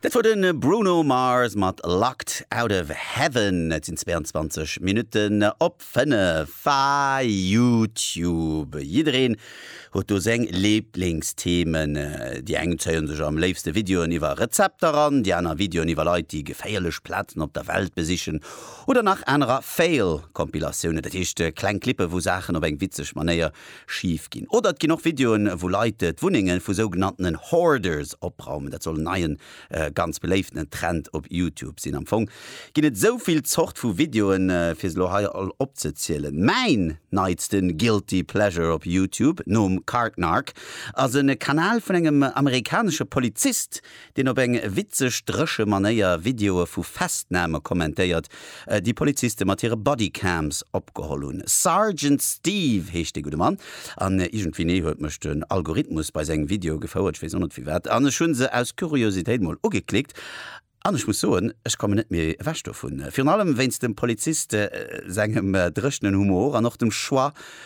Dat wor de Bruno Mars mat Locked Out Of Heaven. Et sinn 22 Minutten op 5. Ah, Youtube, jiddereen huet do seng Liblingsthemen. Déi eng zéie sech am léifste Videoen iwwer Rezepter an, déi aner Videoen iwwer Leit, déi geféierlech Plazen op der Welt besichen oder nach anerer Fail-Compilatiounen, dat heescht kleng Clippe wou Saachen op eng witzeg Manéier Schif ginn. Oder et ginn och Videoen, wou Leit d'Wunnenge vu sougenanntenen Hoarders opraumen. Dat soll en neien, ganz beléiftenen Trend op Youtube sinn. Am Fong ginn et esou vill Zort vu Videoen, fir se elo hei all opzezielen. Mäin neitsten Guilty Pleasure op Youtube, nom Card Narc, ass e Kanal vun engem amerikanesche Polizist, deen op eng witzeg dréche Manéier Videoe vu Festname kommentéiert, déi Poliziste mat hire Bodycams opgeholl hunn. Sergeant Steve heescht dee gudde Mann, an iergendwéini huet mech den Algorithmus bei seng Videoe gefouert, ech weess och net firwat, an ech hu se aus Kuriositéit mol ugeklickt, an ech muss soen, ech kommen net méi ewech dovun, virun allem wéinst dem Polizist sengem dréchenen Humor an och dem Choix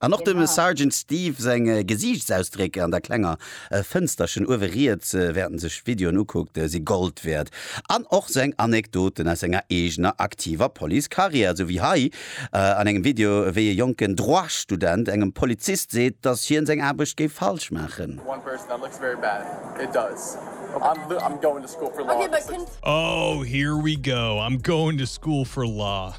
An och dem Sergeant Steve seng Gesiichtsausdréck an der klenger Fënsterchen uewe riets, während en sech Videoen ukuckt, si Gold wäert. An och seng Anekdoten aus senger eegener aktiver Police-Karriär, sou wéi hei an engem Video, wéi e jonken Droit-Student engem Polizist seet, dass hien seng Aarbecht géif falsch maachen.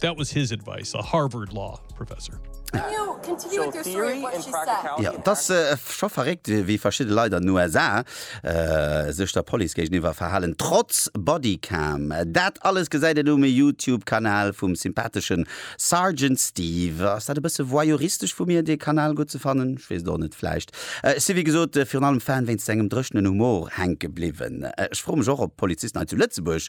That was his advice, a Harvard Law Professor. Jo, et ass scho verréckt, wéi verschidde Leit an den USA sech der Police géigeniwwer verhalen, trotz Bodycam. Dat alles gesäit een um Youtube-Kanal vum sympatheschen Sergeant Steve. Ass dat e bësse voyeuristesch vu mir, dee Kanal gutt ze fannen? Ech weess et och net, vläicht. Ech si wéi gesot virun allem Fan wéinst sengem dréchenen Humor hänke bliwwen. Ech froe mech och, ob d'Polizisten hei zu Lëtzebuerg